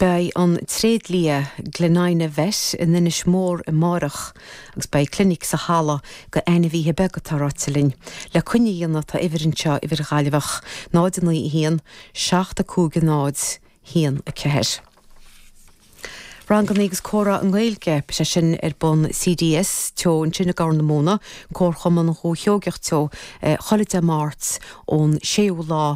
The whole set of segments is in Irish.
Beidh an tréidlia Glenina Vet i nInis Mór amáireach agus beidh clinic sa halla do ainmhíthe beaga atá ráite linn le coinne a dhéanamh tá uimhir anseo, uimhir Ghaillimheach, 091 750 14. Ranganna agus comhrá i nGaeilge, beidh sé sin ar bun CDS Teo ansin i gCorr na Móna, Comharchumann Dhúiche Sheoigeach Teo, chuile Dé Máirt ón 6ú lá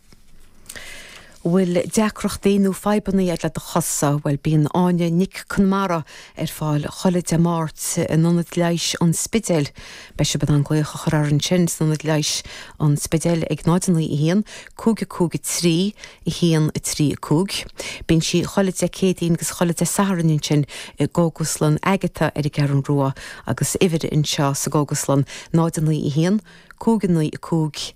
An bhfuil deacrachtaí nó fadhbanna agat le do chosa? Bhuel, bíonn Áine Nic Conmara ar fáil chuile Dé Máirt in Ionad Leighis an Spidéil. Beidh sibh in ann glaoch a chur uirthi ansin san Ionad Leighis, An Spidéal ag 0915 553 135. Bíonn sí chuile Dé Céadaoin agus chuile Dé Satharn ansin i gCógaslann Agatha ar an gCeathrú Rua agus uimhir anseo sa gCógaslann 091595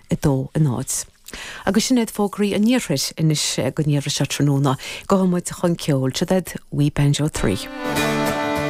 2 in áit Agus sin iad fógraí an Iarthair anois go dtí seo tráthnóna. Gabhfaidh muid chun ceoil. Seo iad We Banjo Three.